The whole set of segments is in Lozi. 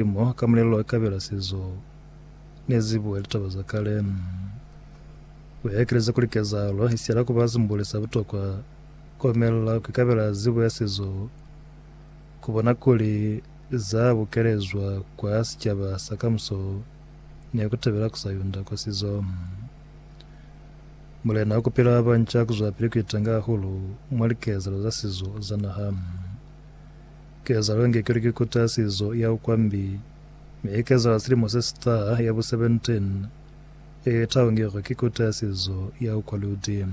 Limo ka mulelo wa kabela se zo ne zi buwa litaba za kale. Ku ya ekeleza kuli kezahalo i siyela ku ba simbuli sa butokwa, ku omelela ku ikabela zibo ya se zo ku bona kuli za bukelezwa kwa sicaba sa kamuso ni ku tabela ku sa yunda kwa sizo. Mulena wa ku pila wa banca ku zwapili ku itanga hahulu mwa likezahalo za sizo za naha. Kezalo inge ki likikuta ya sizo ya ukwambi, mi i kezala silimo se si taha, ya bu 17. Yeo i taungelwe ki kuta ya sizo ya ukwaludi.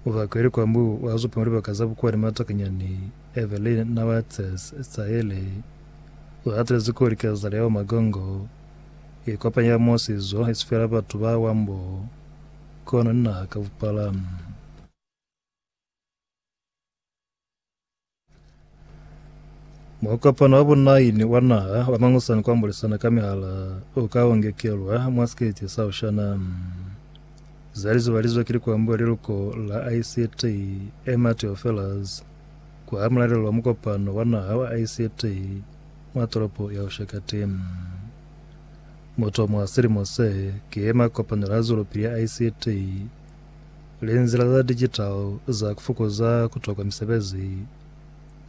Mubaka yo likwambi u a zupa mwa libaka za bukwa ni matakanyani, Evelyn na wa Tess Sayre u hatelezi kuli kezalo ya bumagongo i kopanya mo sizo i si fela batu ba wambo, kono ni naha ka bupala. Mukopano wa bunaini wa naha wa mangusani kwa mbulisana ka mihala u ka ongekelwa mwa sikete sa ushana. Zali zubalizwe ki likwambo ya liluko la ICT Emma Theofelus kwa mulalelo wa mukopano wa naha wa ICT mwa tolopo ya Ushakati. Mutomo wa silimo se ki makopanelo a zwelopili ya ICT Linzila za digital za kufukuza kutokwa misebezi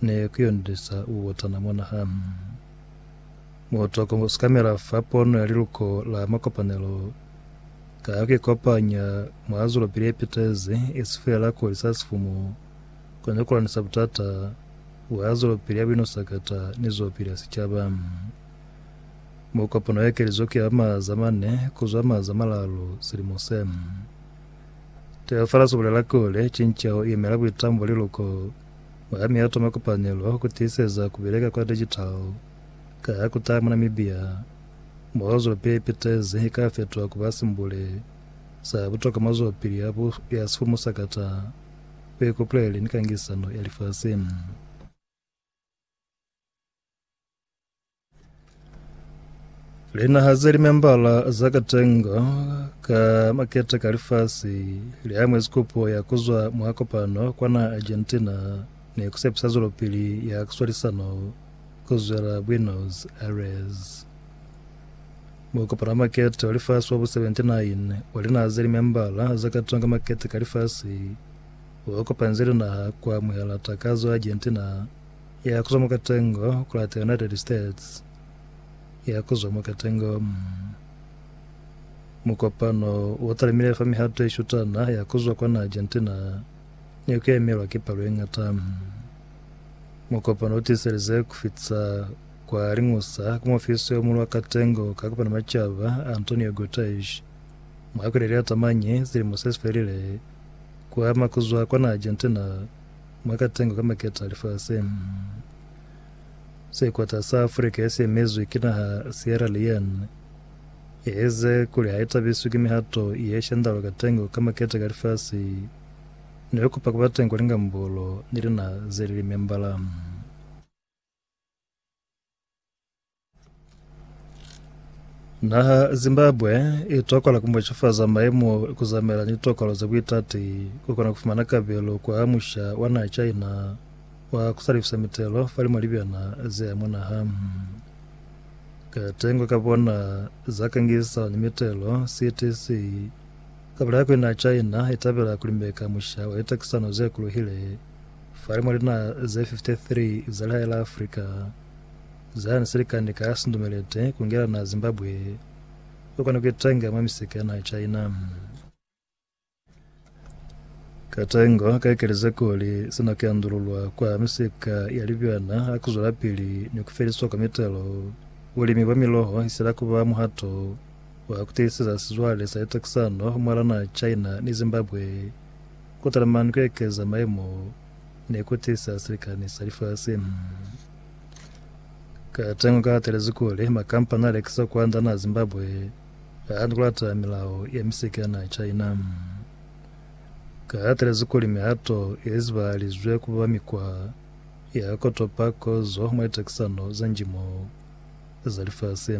ne kuyondisa ubutana mwa naha. Mutoko usikamela fa pono ya liluko la makopanelo ka kuikopanya mwa zwelopili yepitezi, isi feela kuhulisa sifumu, kono ni kulanisa butata bwa zwelopili ya buinusakata ni zwelopili ya sicaba. mo kopano ya kelizo ki ya maaza mane kuzwa maaza malalu silimo se. Teofilus ubulela kuli, cinceho iyemela buitambo li luko mwa ya mihato mwa kupanelo ku tiiseza ku bileka kwa digital ka ya kutala mwa Namibia, mo zope ye pitezi ika fetuha kuba simbule sa butokwa mwa zwapili ya bu ya sifumu sa kata, buikupuleli ni kangisano ya lifasi. Linaha ze limembala za katengo ka makete ka lifasi liamwezi kopo ya kuzwa mwa kopano kwana Argentina ni kusepisa zwelopili ya kuswalisano kuzwela Buenos Aires. Mukopano wa makete wa lifasi wa bu 79 wa linaha ze limembala za katengo ka makete ka lifasi wa kopanze linaha kwa amuhela takazo ya Argentina Ya kuzwa mwa katengo kula the United States, ya kuzwa mwa katengo mm, mukopano wo talimile fa mihato ye shutana ya kuzwa kwana Argentina ne ku yamelwa ki palo ye ngata. Mm. Mukopano wo tiselize ku fita kwa liñusa ku muofisi yo mulu wa katengo ka kopana macaba Antonio Guterres mwa kweli ya liyata mañi silimo se sifelile ku ama kuzwa kwana Argentina mwa katengo ka maketa a lifasi. Sekwata sa Afrika ye siemezwi ki naha Sierra Leone ye eze kuli ha i tabiswi ki mihato ye shandalwa katengo ka maketa ka lifasi ni ku kupa ku ba teng kwa lingambolo ni linaha ze li li membala. Naha Zimbabwe i tokola ku mwecafaza maemo ku zamela ni tokolo za buitati ku kona ku fumana kabelo kwa musha wa naha China wa ku salifisa mitelo fa limo libyana ze ya mwa naha. Katengo ka bona za kangisano ni mitelo CTC ka bulaya kuli naha China i tabela ku limeka musha wa litakisano ze kuluhile Fale mwa linaha ze 53 za lihae la Afrika za ni silikani ka sindumelete ku ngela naha Zimbabwe, u kona ku itenga mwa misika ya naha China. Katengo ka ikelize kuli sina ki andululwa kwa misika ya libyana ha ku zwelapili ni ku feliswa kwa mitelo. Bulimi bwa miloho isila ku ba muhato wa ku tiiseza sizwale sa litekisano mwa la naha China ni Zimbabwe. Ku tala mani ku ekeza mayemo ne ku tisa silikani sa lifasi. Ka tengo ka hatelezi kuli makampani a lekisa kwanda naa Zimbabwe a hana ku lata milao ya misiki ya naa China. Ka hatelezi kuli mihato ye zibahalizwe ku ba mikwa ya ku topa kozo mwa litekisano za njimo za lifasi.